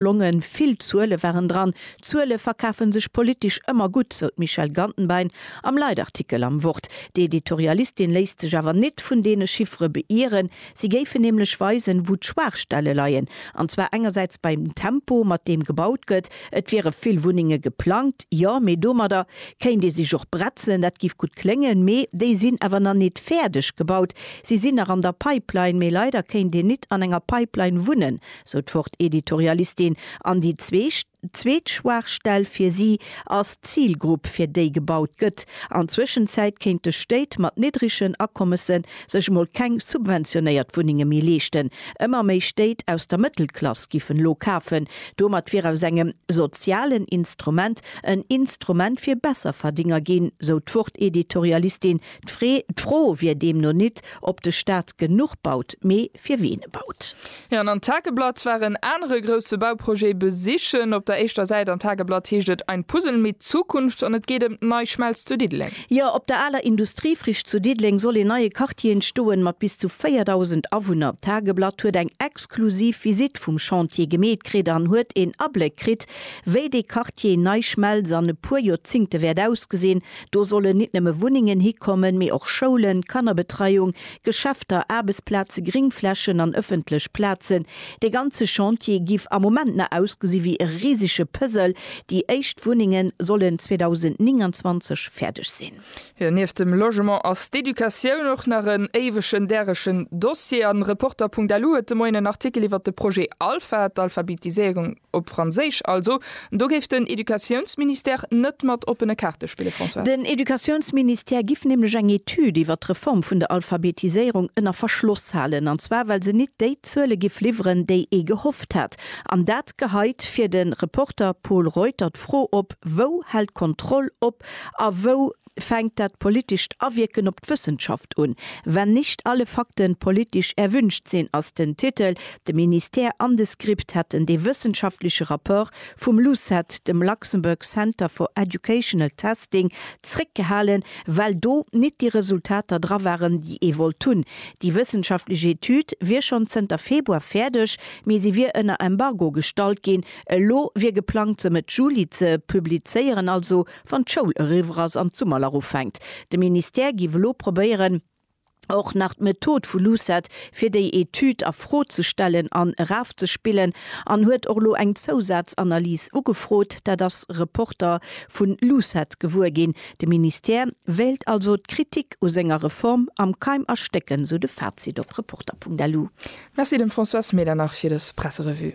Longen, vill Zuele waren dran. Zuele verkafe sech politesch ëmmer gutt, sou d'Michèle Gantenbein am Leitartikel am Wort. D'Editorialistin léisst sech awer nit vun deene Chiffere beieren. Si géifen nämlech weisen, wou d'Schwaachstelle leien. An zwar engersäits beim Tempo, mat deem gebaut gëtt. Et wiere vill Wunnenge geplangt, jo, mee domadder kéint ee sech och bretzen. Dat géif gutt kléngen, mee déi sinn awer nach nit fäerdeg gebaut. Si sinn nach an der Pipeline, mee leider kéint een nit an enger Pipeline wunnen, sou d'Wort-Editorialistin, an déi zweet Schwaachstell fir si ass d'Zilgrupp, fir déi gebaut gëtt. An Zwëschenzäit kéinte Stéit mat niddregen Akommese sech emol keng subventionéiert Wunnenge méi leeschten. Ëmmer méi Stéit aus der Mëttelklass giffen elo kafen. Domat wier aus engem sozialen Instrument en Instrument fir Besserverdénger ginn, sou d'Wort-Editorialistin. D'Fre, d'Fro wier deemno nit, ob de Staat genuch baut, mee fir ween e baut. Jo, an an Tageblatt war en anere grousse Bauprojet besichen. Op der éischter Säit an Tageblatt heescht et Ein Puzzle mit Zukunft an et geet ëm d'Nei Schmelz zu Diddeleng. Jo, op der aler Industriefricht zu Diddeleng soll een neie Quartier entstoen, mat bis zu 4.000 Awunner. Tageblatt huet eng exklusiv Visitt vum Chantier gemeet kritt an huet een Abléck kritt, wéi dee Quartier Nei Schmelz an e puer Joerzingte wäert ausgesinn. Do sollen nit nëmme Wunnengen hikommen, mee och Schoulen, Kannerbetreiung, Geschäfter, Aarbechtsplaze, Gringflächen an ëffentlech Plazen. Dee ganze Chantier giff am Moment nach ausgesi wéi e risege Puzzle. Déi éischt Wunnengen sollen 2029 fäerdeg sinn. Jo, nieft dem Logement ass d'Educatioun och nach en éiwegen däregen Dossier. An Reporter.lu huet de Moien en Artikel iwwert de Projet Alpha, d'Alphabetiséierung, Op Franséisch also. Do géif den Educatiounsministère net mat oppene Kaarte spillen, Françoise. Den Educatiounsministère giff nämlech eng Etüd iwwer d'Reform vun der Alphabetiséierung ënner Verschloss halen, an zwar well se nit déi Zuele giff liwweren, déi ee gehofft hat. An dat geheit fir de Reporter Pol Reuter d'Fro op, Wou hält d'Kontroll op a wou? fänkt dat politescht Awierken op d'Wëssenschaft un. Wenn nicht alle Fakten politisch erwünscht sind ass den Titel. De Ministère an de SCRIPT hätten dee wëssenschaftleche Rapport vum LUCET, dem Luxembourg Centre for Educational Testing, zréckgehalen, well do nit déi Resultater dra waren, déi ee wollt hunn. Déi wëssenschaftlech Etüd wier schonn zënter Februar fäerdeg, mee se wier ënner Embargo gestallt ginn. Elo wier geplangt, se Mëtt Juli ze publizéieren, also wann d'Schoul eriwwer ass an d'Summerlach ufänkt. De Ministère giff elo probéieren, och nach d'Method vu LUCET fir déi Etüd a Fro ze stellen an erafzespillen an huet och elo eng Zousazanalys ugefrot. Dat ass Reporter vu LUCET gewuer ginn. De Ministère wéilt also d'Kritik u senger Reform am Keim erstécken, sou de Fazit op Reporter.lu. Merci dem François Smeeler nach fir dës Presserevue.